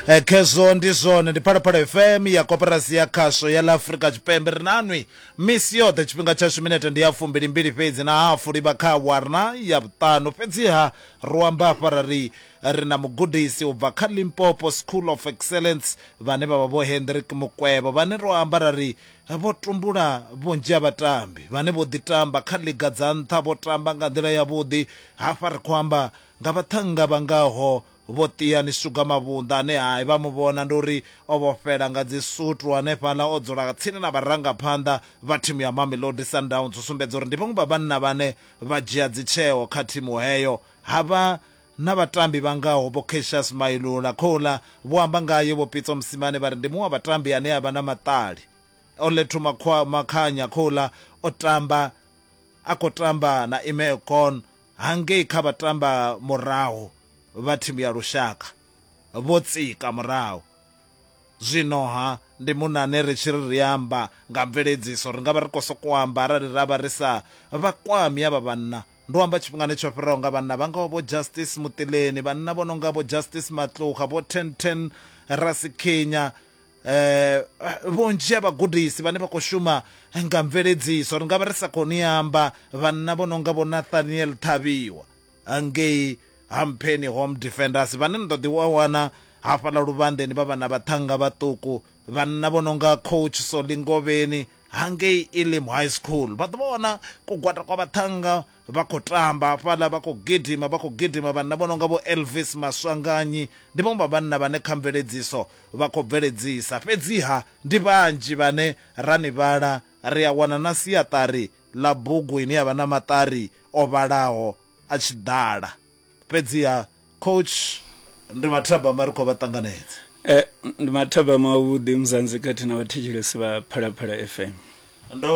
Eh, khezwo ndi zwone ndi phalaphala fm ya koporasi ya khasho ya la afurika tshipembe ri nanwi misi yoṱhe tshifhinga tshashu minete ndi ya fumbilimbili fhedzi na hafu livha kha warna ya vhuṱanu fhedziha ro amba afha ra ri ri na mugudisi u bva kha limpopo school of excellence vhane vha vha vho hendrik mukwevho vhane ro amba ra ri vho tumbula vhunzhi ha vhatambi vhane vho ḓitamba kha liga dza nṱha vho tamba nga nḓila yavhuḓi hafha ri khou amba nga vhaṱhannga vha ngaho Vho Tia ni suga mavhunḓa ane hai vha mu vhona ndi uri o vhofhela nga dzi sutu hanefhaḽa o dzula tsini na vharangaphanḓa vha thimu ya Mamelodi Sundowns u sumbedza uri ndi vhaṅwe vha vhanna vhane vha dzhia dzitsheo kha thimu heyo. Ha vha na vhatambi vha ngaho Vho Cassius Mailula, khouḽa vho amba ngae Vho Pitso Mosimane vha ri ndi muṅwe wa vhatambi ane a vha na maṱali. O Lethu Makhanya, khouḽa o tamba a khou tamba na Imeo Kon hangei kha vhatamba murahu vha thimu ya lushaka vho tsika murahu. Zwino-ha, ndi muṋe ane ri tshi ri ri amba nga mveledziso, ri nga vha ri khou sokou amba arali ra vha ri sa vha kwami avha vhanna. Ndo amba tshifhingani tsho fhiraho nga vhanna vha ngaho Vho Justice Mutileni, vhanna vho no nga Vho Justice Matluga, Vho Ten Ten Rasikhinya eh vhunzhi ha vhagudisi vhane vha khou shuma nga mveledziso ri nga vha ri sa khou ni amba vhanna vho no nga vho nathaniel ṱhavhiwa ngei hampheni home defenders vhane ni ḓo ḓi wa wana hafhaḽa luvhandeni vha vhana vhaṱhanga vhaṱuku vhanna vho no nga coach solingovheni hangei elim high school vha ḓo vha wana kugwada kwa vhaṱhanga vha khou tamba hafhaḽa, vha khou gidima, vha khou gidima, vhanna vho no nga vho Elvis Maswanganyi, ndi vhaṅwe vha vhanna vhane kha mveledziso vha khou bveledzisa. Fhedziha ndi vhanzhi vhane ra ni vhala, ri a wana na siaṱari ḽa bugu ine ya vha na maṱari o vhalaho a tshi ḓala. Fhedziha coach ndi mathabama ri khou vha ṱanganedza. E, ndi mathabama avhuḓi Mzansi khathihi na vhathetshelesi vha Phalaphala FM. Ndo,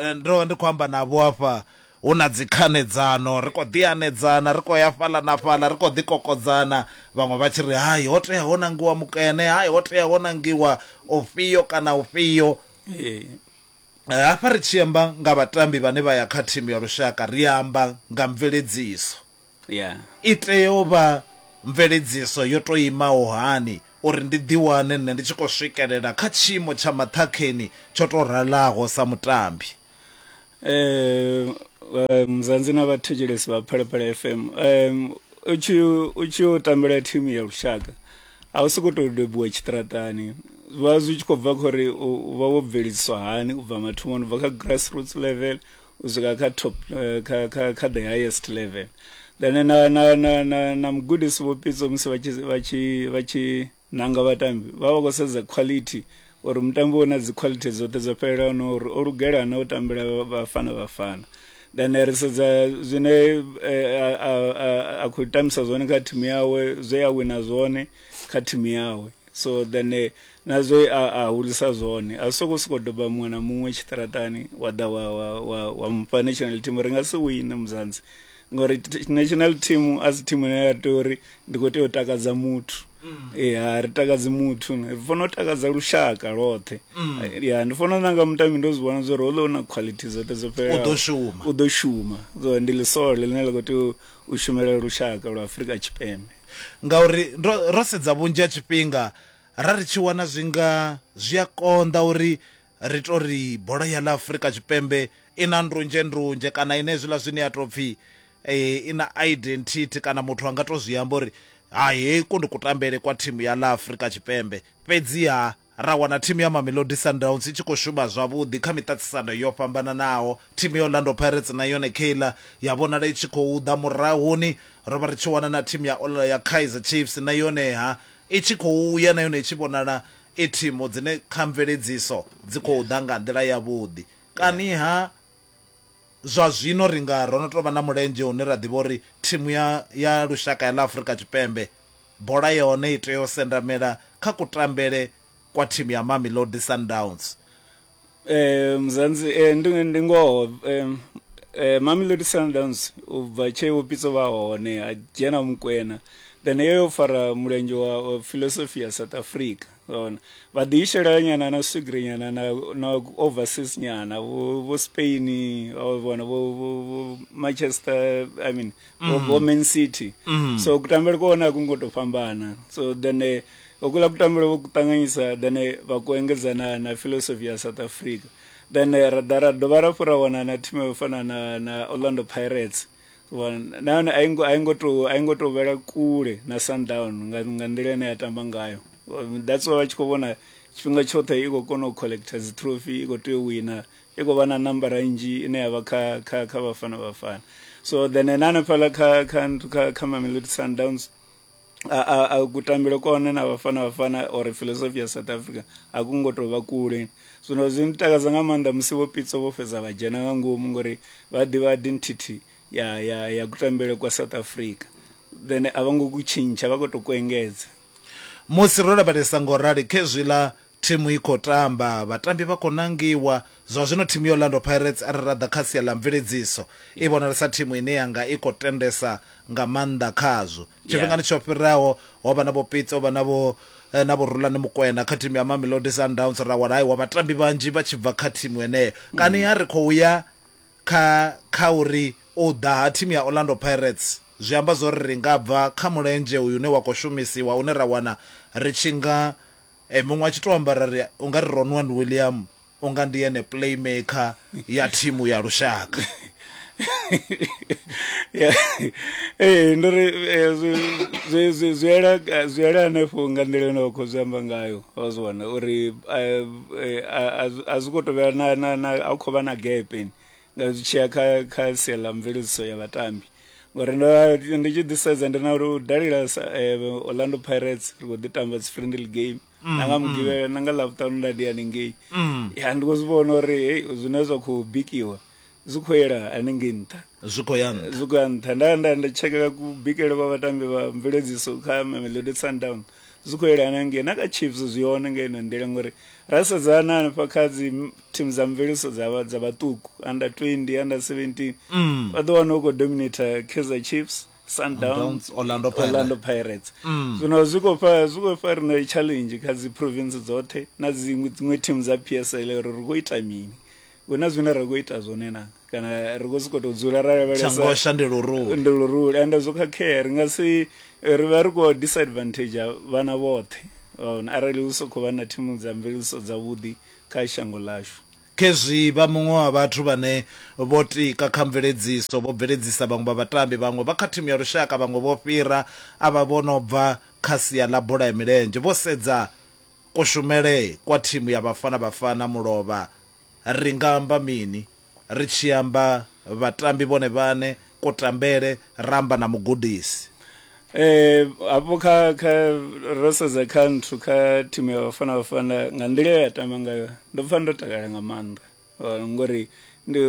e, ndo ndi khou amba navho afha hu na dzikhanedzano, ri khou ḓi anedzana, ri khou ya fhaḽa na fhaḽa, ri khou ḓi kokodzana, vhaṅwe vha tshi ri hai ho tea ho nangiwa mukene, hai ho tea ho nangiwa ufhio kana ufhio. Ee. Hafha ri tshi amba nga vhatambi vhane vha ya kha thimu ya lushaka ri a amba nga mveledziso. I tea u vha mveledziso yo tou imaho hani uri ndi ḓiwane nṋe ndi tshi khou swikelela kha tshiimo tsha maṱhakheni tsho tou ralaho sa mutambi? Mzansi na vhathetshelesi vha Phalaphala FM, u tshi yo tambela thimu ya lushaka, a u soko tou bebiwa tshiṱiraṱani zwi vha zwi tshi khou bva khori u vha wo bveledziswa hani u bva mathomoni u bva kha grassroots level u swika kha top eh, kha, kha, kha the highest level then na na na na, na mugudisi vho pitso musi vha tshi vha tshi vha tshi nanga vhatambi vha vha khou sedza quality Uri mutambi u na dzikhwalithi dzoṱhe dzo fhelelaho na uri o lugela na u tambela Bafana Bafana then ri sedza zwine a khou tambisa zwone kha thimu yawe zwe a wina zwone kha thimu yawe so then eh, na zwe a hulisa zwone a si sokou sokou doba muṅwe na muṅwe tshiṱaratani wa ḓa wa wa wa wa mufha national team ri nga si wine muzanzi ngori national team a si thimu ine ya tea uri ndi khou tea u takadza muthu mm. ya ri takadzi muthu ri fanela u takadza lushaka lwoṱhe mm. ya ndi fanela nanga mutambi ndo zwi vhona zwa uri houḽa u na quality dzoṱhe dzo fhelelaho u ḓo shuma so ndi ḽisole ḽine ḽa khou tea u shumela lushaka lwa afurika tshipembe ngauri ro sedza vhunzhi ha tshifhinga ra ri tshi wana zwi nga zwi a konḓa uri Ri tou ri bola ya ḽa Afrika Tshipembe i na ndunzhendunzhe kana i na hezwiḽa zwine ya tou pfhi i na identity kana muthu a nga tou zwi amba uri hai heku ndi kutambele kwa thimu ya ḽa Afrika Tshipembe. Fhedziha ra wana thimu ya Mamelodi Sundowns i tshi khou shuma zwavhuḓi kha miṱaṱisano yo fhambananaho. Thimu ya Orlando Pirates na yone kheiḽa ya vhonala i tshi khou ḓa murahuni. Ro vha ri tshi wana na thimu ya ya Kaizer Chiefs na yoneha i tshi khou ya na yone i tshi vhonala e thimu dzine kha mveledziso dzi khou ḓa nga nḓila yavhuḓi. Kani-ha, zwa zwino ri nga ro no tou vha na mulenzhe une ra ḓivha uri thimu ya ya lushaka ya ḽa Afrika Tshipembe bola ya hone i tea u sendamela kha kutambele kwa thimu ya Mamelodi Sundowns. eh mzansi eh ndi ndi ngoho eh eh Mamelodi Sundowns u bva tshe vho pitso vha hone ha dzhena mukwena then yo yo fara mulenzhe wa, wa philosophy ya South Africa ona vha ḓi ishela nyana na swigiri nyana na na overseas nyana vho vho Spain vho vhona vho vho- vho Manchester I mean mm. of women city mm. so kutambele kuona kungo to fambana so then eh, okula kutambele vo kutanganyisa then eh, va ku engedza na, na philosophy ya south africa then eh, ra da ra dovha ra fura wana na thimu yo fana na, na orlando pirates nahone a ingo a ingo to a ingo to vhela kule na sundown nga nga nḓila ine ya tamba ngayo that's why vha tshi khou vhona tshifhinga tshoṱhe i khou kona u collector dzi trophy i khou tea u wina i khou vha na nambara nnzhi ine ya vha kha kha kha vhafana vhafana so then ene hanefhaḽa kha kha kha kha mamelodi sundowns a kutambile kone na vhafana vhafana or philosophy ya south africa a ku ngo tou vha kule zwino zwi ntakadza nga maanḓa musi vho pitso vho fhedza vha dzhena nga ngomu ngori vha ḓivha identity ya ya ya kutambele kwa south africa then a vha ngo ku tshintsha vha khou tou ku engedza musi ro lavhelesa ngo rali khezwiḽa Thimu i khou tamba, vhatambi vha khou nangiwa. Zwa zwino thimu ya Orlando Pirates arali ra ḓa kha sia ḽa mveledziso, i vhonalesa thimu ine ya nga i khou tendesa nga maanḓa khazwo. Tshifhingani tsho fhiraho ho vha na Vho Pitso, ho vha na Vho na Vho Rulani Mokwena kha thimu ya Mamelodi Sundowns, ra wana aiwa vhatambi vhanzhi vha tshi bva kha thimu heneyo. Kani ha ri khou ya kha kha uri u ḓa ha thimu ya Orlando Pirates zwi amba zwo ri ri nga bva kha mulenzhe uyu une wa khou shumisiwa une ra wana ri tshi nga Ee, muṅwe a tshi tou amba ra ri u nga ri Ronwan William u nga ndi ene playmaker ya thimu ya lushaka. Ee, ndo ri zwi ela hanefho nga nḓila ine wa khou zwi amba ngayo wa zwi wana uri a zwi khou tou vhea a khou vha na gepe nga zwi tshiya kha kha sia ḽa mveledziso ya vhatambi ngori ndo ndi tshi ḓisedza ndi na uri u dalela eh, orlando pirates ri khou ḓi tamba dzi friendly game mm, na nga mm. mugivhela na nga ḽavhuṱanu nda ndi haningei mm. ya ndi khou zwi vhona uri hei zwine zwa khou bikiwa zwi khou yela haningei nṱha zwi khou ya nṱha zwi khou ya nṱha nda nda nda tshekela kubikele kwa vhatambi vha mveledziso kha mamelodi sundowns Zwi khou yelana hangei na kha Chiefs zwi hone nga ino nḓila ngori ra sedza na hanefha kha dzi thimu dza mveledziso dza dza vhaṱuku under 20 under 17 mm. vha ḓo wana u khou dominator Kaizer Chiefs Sundowns Orlando Pirates, Orlando Pirates. Mm. zwino zwi khou fha zwi khou fha rina challenge kha dzi province dzoṱhe na dziṅwe dziṅwe thimu dza PSL uri ri khou ita mini hu na zwine ra khou ita zwone na kana ri khou sokou tou dzula ra lavhelesa ndi luruli ende zwo khakhea ri nga si ri vha ri khou disadvantage vhana vhoṱhe vhaona arali hu sokou vha na thimu dza mveledziso dzavhuḓi kha shango ḽashu khezwi vha muṅwe wa vhathu vhane vho tika kha mveledziso vho bveledzisa vhaṅwe vha vhatambi vhaṅwe vha kha thimu ya lushaka vhaṅwe vho fhira a vha vho no bva kha sia ḽa bola ya milenzhe vho sedza Kushumele kwa thimu ya Bafana Bafana mulovha ri nga amba mini? Ri tshi amba vhatambi vhone vhaṋe, kutambele, ra amba na mugudisi. Hafho kha kha ro sedza kha nthu kha thimu ya Bafana Bafana nga nḓila ye ya tamba ngayo ndo pfha ndo takala nga maanḓa Uh, ngori ndi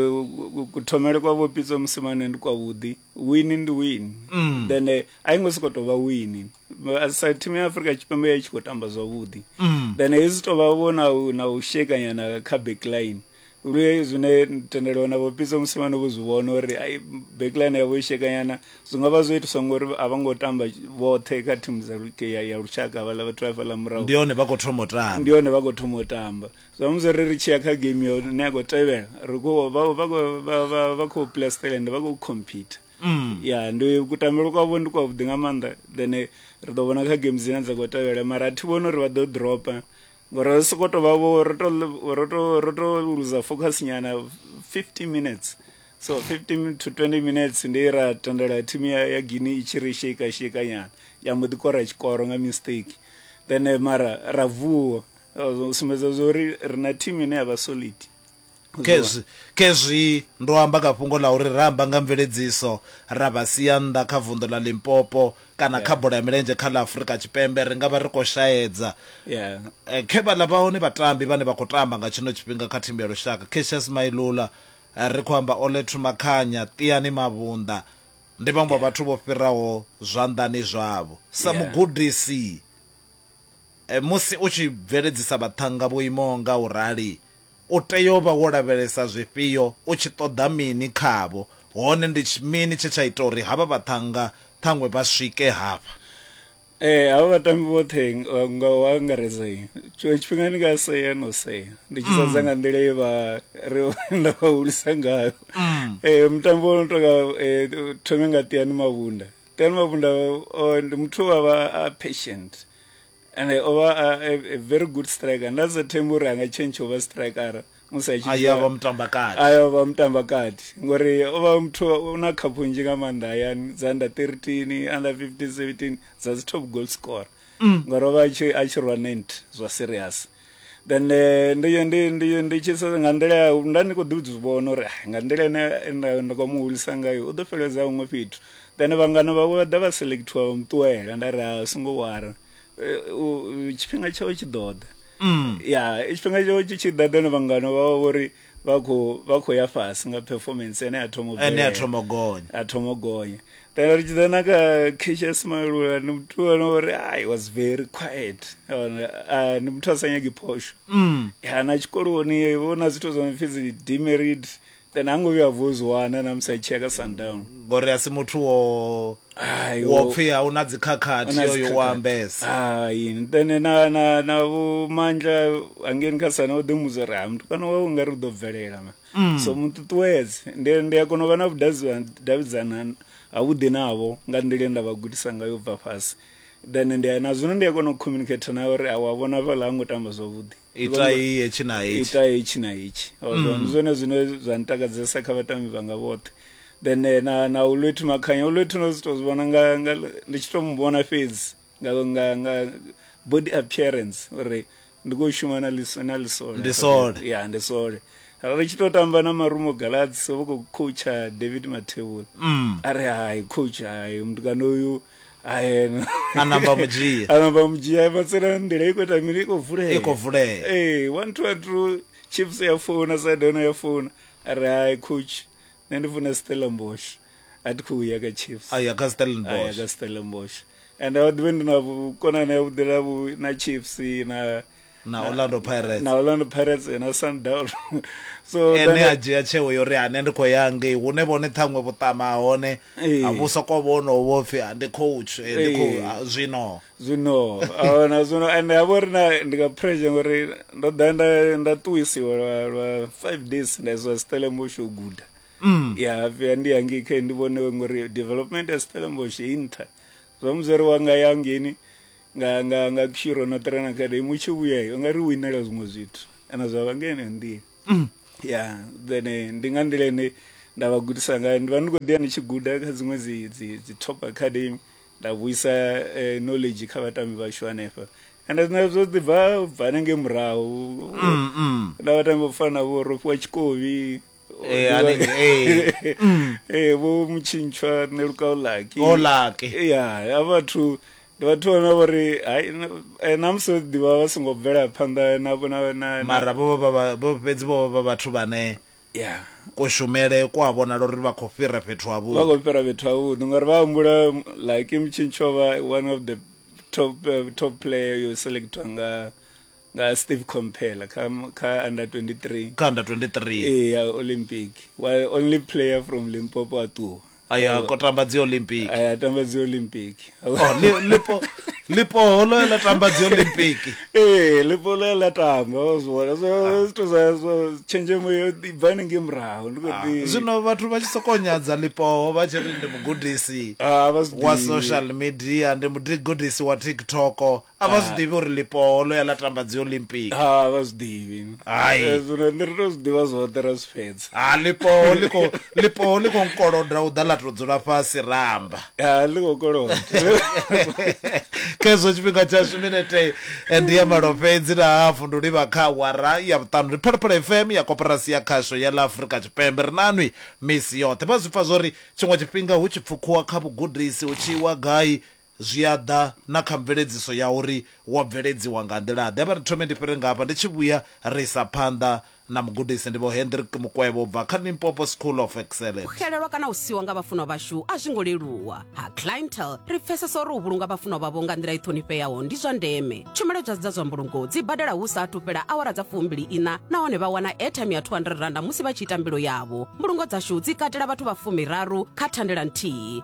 kuthomele kwa vho pitso musimane ndi kwavhuḓi wini ndi wini mm. then eh, a i ngo soko tovha wini sa thimu ya afrika tshipembe ya tshi khou tamba zwavhuḓi mm. then hei zwi tovha vho na na u shekanyana kha backline lue zwine tendelo na vho pitso musimane vho zwi vhona uri ai backline yavho i shekanyana zwi nga vha zwo itiswa ngori a vha ngo tamba vhoṱhe kha thimu dza ya lushaka vhaḽa vhathu vha fhaḽa murahu ndi hone vha khou thoma u tamba ndi hone vha khou thoma u tamba samusi ri ri tshiya kha game yo ne ya khou tevhela ri khou vha khou play stelland vha khou compete mm. ya ndi kutambelo kwavho ndi kwavhuḓi nga maanḓa then ri ḓo vhona kha game dzine dza khou tevhela mara thi vhoni uri vha ḓo dropa ngori ri sokou tou vhavho ro to luza focus nyana 50 minutes so 15 to 20 minutes ndi ra tendela thimu ya guine i tshi ri shake shake nyana ya mbo ḓi kora tshikoro nga mistake then mara ra vuwa zwo sumbedza zwa uri ri na thimu ine ya vha solid khezwi khezwi ndo amba kha fhungo ḽa uri ra amba nga mveledziso ra vha sia nnḓa kha vunḓu ḽa limpopo kana kha bola ya milenzhe kha ḽa afurika tshipembe ri nga vha ri khou shaedza yeah Eh, khe vha ḽa vha hone vhatambi vhane vha khou tamba nga tshino tshifhinga kha thimu ya lushaka cassius mailula eh, ri khou amba olethu makhanya tiani mavhunḓa ndi vhaṅwe vha vhathu vho fhiraho zwanḓani zwavho sa Yeah. mugudisi Musi u tshi bveledzisa vhaṱhannga vho imaho nga u rali, u tea u vha wo lavhelesa zwifhio, u tshi ṱoḓa mini khavho, hone ndi mini tshe tsha ita uri havha vhaṱhannga ṱhaṅwe vha swike hafha? Ee, havha vhatambi vhoṱhe nga u angaredza tshiṅwe tshifhinga ndi nga sea no sea ndi tshi sedza nga nḓila ye vha ri nda vha hulisa ngayo. Mutambo wo no tonga thome nga Tiani Mavhunda. Ken Mabunda uh, ndi muthu wa vha a patient and o vha a, a, a very good striker nda sa thembi uri anga change o vha striker musi a tshi vha mutamba kati ayo vha mutamba kati ngori o vha muthu una khaphu nzhi nga maanḓa hayani dza under 13 under 15 17 dza dzi top goal scorer mm. ngori o vha a tshi rwa 90 zwa serious then ndi ndi ndi ndi tshi sedza nga nḓila ya nda ndi kho ḓi zwi vhona uri nga nḓila ine nda nda kho mu hulisa ngayo u ḓo fheleledza huṅwe fhethu then vhangana vhawe vha ḓa vha selectiwa vha muṱuwela nda ri a songo wara tshifhinga tshawe tshi ḓo ḓa ya tshifhinga tshawe tshi tshi ḓa then vhangana vhawe vhori vha kho vha kho ya fhasi nga performance ene a thoma ene a thoma gonya a thoma gonya then ri tshi na ka Keisha Smile wa ni muthu wa no ri i was very quiet a ni muthu a sa nyagi phosho mm ya na tshikoloni vho na zwithu zwa mfisi dzi demerit then hango vhuya vho zwi wana na musi a tshi ya ka sundown ngori a si muthu wo Hai, wo wo- pfi a una dzikhakhathi Una yoyo dzikhakhathi. wa ambesa hai ntene na na na vho mandla angeni kha sana o ḓi mudza uri ha mutukana wawe nga ri u ḓo bvelela ma Mm. so muṱuṱuwedze ndi ndi a kona u vha na vhudavhidzana ha vhuḓi navho nga nḓila ye nda vha gudisa ngayo u bva fhasi then ndi a- na zwino ndi a kona u communicate nawe uri a wa vhona fhaḽa ha ngo tamba zwavhuḓi Itai hetshi na hetshi. Itai hetshi na hetshi. Mm. Ndi zwone zwine zwa ntakadzesa kha vhatambi vhanga vhoṱhe. Then eh, na na Ulwethi Makhanya, Ulwethi no to zwivhona nga nga ndi tshi to mu vhona fhedzi nga nga nga body appearance uri ndi khou shuma na liso na lisole. Ndi sole. Ya, ndi sole. Ri tshi to tamba na Marumo Galaxy, vho khou coacha David Mathebula. Mm. Ari hai coach hai mtukana uyu ayena a namba mudzhia anamba mudzhia matsela nḓila i khou ita mini i khou vulea i khou vulea ee one two one two chips ya founa sadona ya founa a ri hai coach nṋe ndi funa stellenbosch a thi khou ya ka chips a ya ka stellenbosch ka stellenbosch and a ḓivhe ndi na vhukonani ya vhuḓela vhu na chips na na Orlando Pirates na Orlando Pirates na Sundowns so ene a dzhia tsheo yo ri ane ndi khou ya ngei hune vhone ṱhaṅwe vhuṱama hone a vhu sokou vhono vho pfhi ndi coach ndi khou zwino zwino ahona zwino ende ha vho ri na ndi nga pressure ngori ndo ḓa nda nda ṱuwisiwa lwa lwa five days nda iswa Stellenbosch u guda mm. ya vhuya ndi ya ngei khe ndi vhone ngori development ya Stellenbosch i nṱha zwa muzweri wanga ya ngeni nga nga nga kushiro no trena kade mutshi vhuya u nga ri winela zwiṅwe zwithu kana zwa vha ngene nḓila mm. ya then eh, ndi nga nḓila ine nda vha gudisa ngayo ndi vha ndi khou ḓiya ndi tshi guda kha dziṅwe dzi dzi dzi top academy nda vhuisa eh, knowledge kha vhatambi vhashu hanefha and zwine zwo ḓi bva bva nenge murahu mm, mm. na vhatambi vho fana vho rofhiwa tshikovi Eh, a ne- eh, ee vho mutshintshwa nṋe lukaulaki Olaki. ya ya vhathu ndi vhathu vhane vho ri hai na- eh, na musi vho ḓivha vha songo bvela phanḓa na na na- na mara vho vha vha- vho fhedzi vho vha vha vhathu vhane ya kushumele ku a vhonala uri vha khou fhira fhethu ha vha vhuḓi khou fhira fhethu havhuḓi ngori vha humbula like mutshintshwa vha one of the top eh, top player yo selectwa nga nga Steve Komphela kha kha under 23 kha under 23 eh ya Olympic wa only player from Limpopo a ṱuwa aya ko tamba dzi Olympic aya tamba dzi Olympic oh Lipo Lipo holo la tamba dzi Olympic eh Lipo lo la tamba zwona so ah. zwithu zwa so tshenzhemo yo ibvani nge murahu ndi kho ah, ḓi zwino vhathu vha tshi sokonyadza Lipo vha tshi ri ndi mugudisi ah, wa social media ndi mugudisi wa TikTok a vha zwi ḓivhi uri ḽipoho ḽo ya ḽa tamba dzi olympic ha vha zwi ḓivhi Hai. Eh, zwino nṋe ri to zwi ḓivha zwoṱhe ra zwi fhedza ha ḽipoho ḽi khou ḽipoho ḽi khou nkoloda u ḓa ḽa tou dzula fhasi ramba ha ḽi khou koloda khezwo tshifhinga tshashu minete eh, ndi ya malo fhedzi na hafu ndi u livha kha awara ya vhuṱanu ndi phalaphala fm ya koporasi ya khasho ya ḽa afurika tshipembe ri nanwi misi yoṱhe vha zwi pfa zwori tshiṅwe tshifhinga hu tshi pfukhuwa kha vhugudisi hu tshi iwa gai Zwi a ḓa na kha mveledziso ya uri wo bveledziwa nga nḓila-ḓe. Vha ri thome ndi fhire ngafha ndi tshi vhuya ra isa phanḓa na mugudisi. Ndi Vho Hendrick Mukwevho u bva kha Limpopo School of U Excellence. xelelwa kana u siwa nga vhafunwa vhashu a zwi ngo leluwa. Ha Clientele, Ri pfesesa uri u vhulunga vhafunwa vhavho nga nḓila i ṱhonifheaho ndi zwa ndeme. Tshumelo dza dza zwa mbulungo dzi badela hu sa athu fhela awara dza fumbili iṋa nahone vha wana airtime ya R200 musi vha tshi ita mbilo yavho. Mbulungo dzashu dzi katela vhathu vha fumi raru kha thandela nthihi.